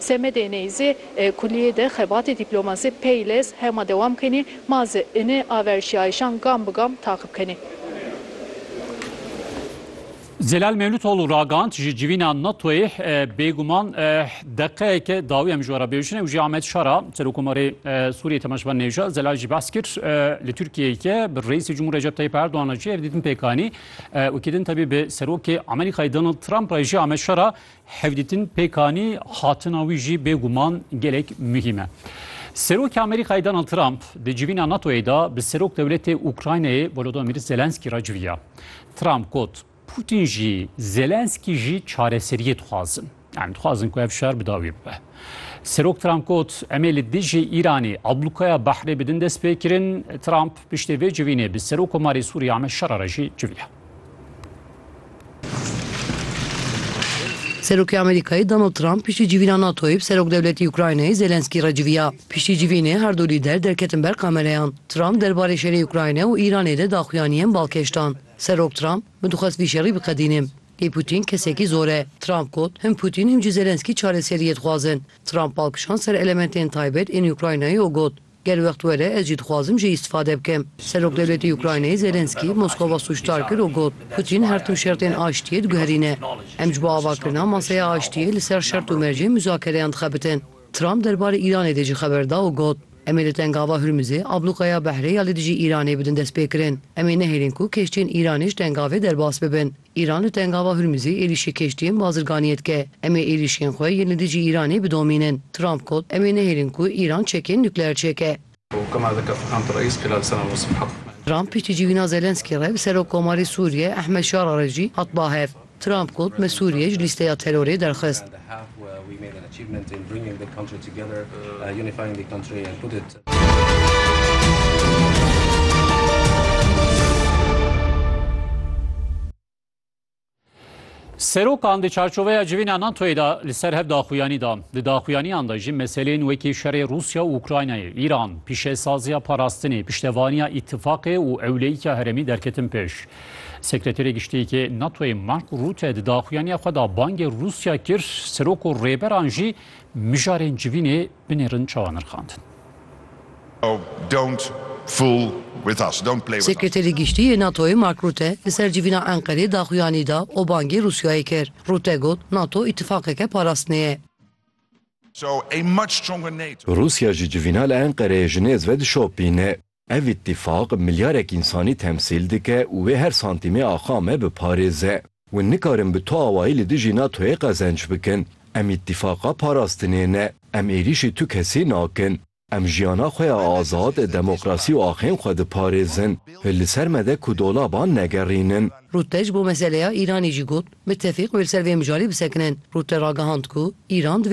Semedê Neyzî, Kulîyê de xebatê dîplomasî peyles hema dewam kenî, ma zi ini averşîyayîşan gam bi gam taqib kenî. Zelal Mevlutoglu ragand, Ji civîna NATOyê bêguman deqeyeke dawî em ji we re bêjine û jî Ahmet Şara, Serokomarê Sûriyê Temeşvan Nêjad Zelal jî behs kir li Tirkiyeyê bi Reîsê Cumhur Recep Tayyip Erdogan re jî hevdîtin pêk anî. Wekî din tevî bi Serokê Amerîkayê Donald Trump re jî Ahmet Şara Hevdîtin pêkanî hatina wî jî bêguman gelek muhîm e. Serokê Amerîkayê Donald Trump di civîna NATO'yê de bi serok dewletê Ukraynayê Volodymyr Zelenskî re civiya. Trump got, Putin jî, Zelenskî jî çareseriyê dixwazin. Yani dixwazin ku ev şer bi dawî bibe. Serok Trump got, em ê li dijî Îranê ablûkaya behrê bidin destpêkirin. Trump piştê vê civînê bi Serok Komarê Sûriyê Ahmed Şara re jî civiya. Serokê Amerîkayê Donald Trump piştî civîna NATO'yê bi serokdewletî Ukraynayê Zelenskî re civiya. Piştî civînê her du lîder derketin ber kamereyan. Trump derbarê şerê Ukrayna û Îranê de daxuyaniyên balkêş dan. Serok Trump, Min dixwest vî şerî biqedînim. Lê Pûtîn kesekî zor e. Trump got, Him Pûtîn him jî Zelenskî çareseriyê dixwazin. Trump bal kişand ser elementên taybet ên Ukraynayê û got, Ger wext were ez jî dixwazim jê îstîfade bikim. Serokwdewletê Ukraynayê Zelensky Moskova sûcdar kir û got, Putîn her tim şertên aştiyê diguherîne. Em ji bo avakirina maseya aştiyê li ser şert û mercên muzakereyan dixebitin. Trump derbarê Îranê de jî xeber da û got, Em ê li Tengava Hurmizê ablûqa ya behrê ya li dijî Îranê bidin destpêkirin. Em ê nehêlin ku keştiyên Îranê ji tengavê derbas bibin. Îran li Tengava Hurmizê êrîşê keştiyên bazirganiyê dike. Em ê êrîşên xwe yên li dijî Îranê bidomînin. Trump got, Em ê nehêlin ku Îran çekên nukleer çêke. Trump piştî civîna Zelensky re bi Serokkomarê Sûriye Ehmed Şara re jî hat ba hev. Trump got, Me Sûriye ji lîsteya terorê derxist. Serokan di çarçoveya civîna NATOyê de li ser hev daxuyanî da. Di daxuyaniyan de jî meselên wekî şerê Rûsya û Ukraynayê, Îran, pîşesaziya parastinê, piştevaniya îtifaqê û ewleyîka herêmî derketin pêş. Sekreterê Giştîkê NATOyê Mark Rutte di daxuyaniya xwe de bangê Rûsya kir, serok û rêberan jî mijarên civînê Binêrin çawa nirxandin. Sekreterê Giştî yê NATO'yê Mark Rutte li ser civîna Enqerê daxuyanî da û bangê Rûsyayê kir. Rutte got, NATO îtîfaqeke parastinê ye. Rûsya ji civîna li Enqereyê ji nêz ve dişopîne. Ev îtîfaq milyarek însanî temsîl dike û wê her santîmê axa me biparêze. Hûn nikarin bi tu awayî li dijî NATO'yê qezenç bikin. Em îtîfaqa parastinê ne. Em êrîşî tu kesî nakin. Em jiyana xwe ya azad, demokrasî û axên xwe diparêzin. Hil li ser me de ku dolaban negerînin. Rûtte ji bo meseleya Îranê jî got, Mitefîq wê li ser vê mijarê bisekinin. Rûtte ragihand ku Îran di vê